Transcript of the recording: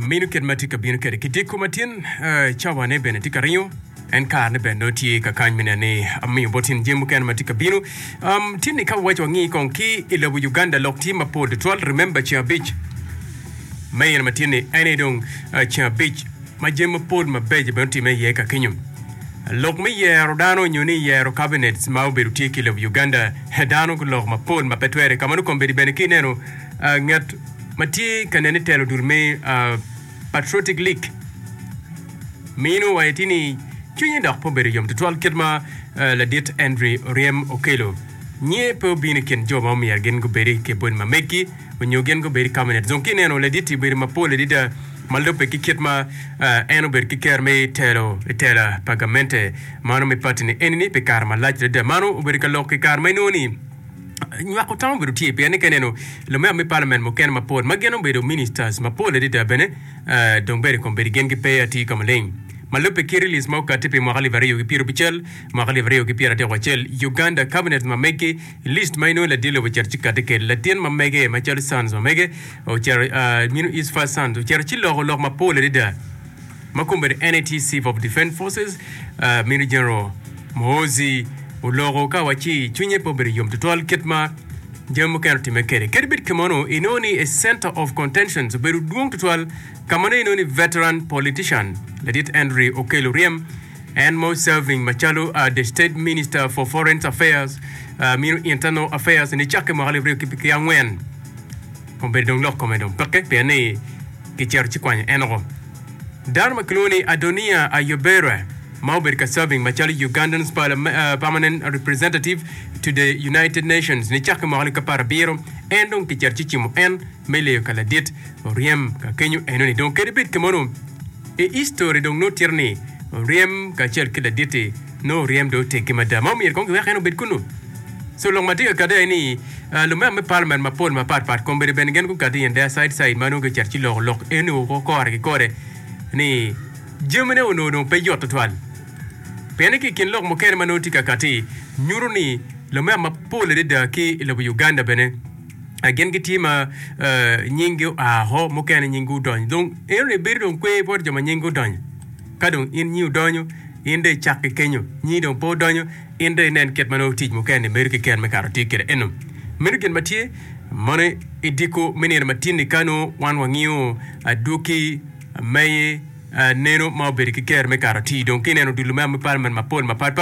minu kit ma tye ka bino kwede ki diko matin cawane bene tye ka ringo en karne bene nongo tye ka kany me neno ni amiyo bot in jami mukene ma tye ka bino um, tinni ka wawaco wangi kong ki i lobo uganda lok tye mapol tutwal remember ceng abic me in matinni en aye dong ah, ceng abic ma jami mapol mabeco bene otimme iye ka kenyo lok me yero dano nyo ni yero cabinets ma obedo tye ki i lobo uganda dano guloko mapol ma pe twere ka mano kombedi bene ki ineno ngat ma tye ka nen ni telo dul me Patriotic League mino wa iti ni cwinye dok pe obedo yom tutwal kit ma ladit Andry Oryem okelo nye pe obino i kin jo ma omyero gin gubedi ki bot ma megi onyo gin gubedi kabinet dong ki ineno laditi obedo ma pol adida ma lube ki kit ma en obedo ki kero me telo i tela pa gamente mano me pati ni eni ni pi kare malac adida mano obedo ka lok i kare ma inongo ni Nywako tam obedo tye pien ni ka ineno lumeo me palament mukene mapol ma gin obedo ministers mapol adada bene dong bene kombedi gin gipe atir ka maleng. Ma lubbe ki release ma okati pi mwaka alip aryo ki pyerabicel, mwaka alip aryo ki pyeratyeko acel, Uganda cabinet ma mege, list ma inongo ladit lobo ocito ci kati kede latin ma mege macalo sons ma mege, New East First Sons ocito ci loko lok mapol adada. ma kombeddi NAT Chief of Defence Forces, Major General Muhoozi oloko ka wa ci cwinye pe obedo yom tutwal kit ma jami mukene otimme kede. Kadi bed kemano, inongo ni a center of contentions obedo dwong tutwal ka ma nongo inongo ni veteran politician ladit Henry Okello Oryem, en ma oserving macalo the State Minister for Foreign Affairs, Internal Affairs nicakke mwaka alip aryo ki angwen, Obedo dong lok kome dong peke pien ni gicito ci kwanyo en oko. Dano ma kilwongo ni Adoniya Ayobera ma obedo ka serving macalo Ugandan's Permanent Representative to the United Nations nicake mwaka lika par abiro, en dong kicito ci cimo en me leyo ka ladit oryem ka kenyo eno ni dong kadi bed kemonu i history dong nongo tito ni oryem kacel ki laditi Nongo oryem dong oteggi mada ma omyero kong giwek en obed kunnu. So lok ma tye ka kati aye ni, lumeno me palament mapol mapat pat kombeddi bene gin gukati i Ndea Said Said ma nongo gicito ci loko lok eni woko kore ki kore ni jamine onongo dong pe yot tutwal. Pienni ki i kin lok mukene ma nongo tye ka kati nyuto ni lumeno mapol adada ki i lobo Uganda bene gin gitye ma nyinggi oa woko, mukene nyinggi odonyo. Dong enoni bedo dong kwer bot jo ma nyinggi odonyo. Ka dong in nyi odonyo, in dong icak ki kenyo. Nyi dong pe odonyo, in dong inen kit ma nongo tic mukene-ni bedo ki ken me kato atir kwede eno. Meno gin ma tye. Mono i diko me nino matin-ni ka nongo wan wangiyo adwoki me neno ma obedo ki ker me kato atir, dong ka ineno dul me amipalmen mapol mapatpat,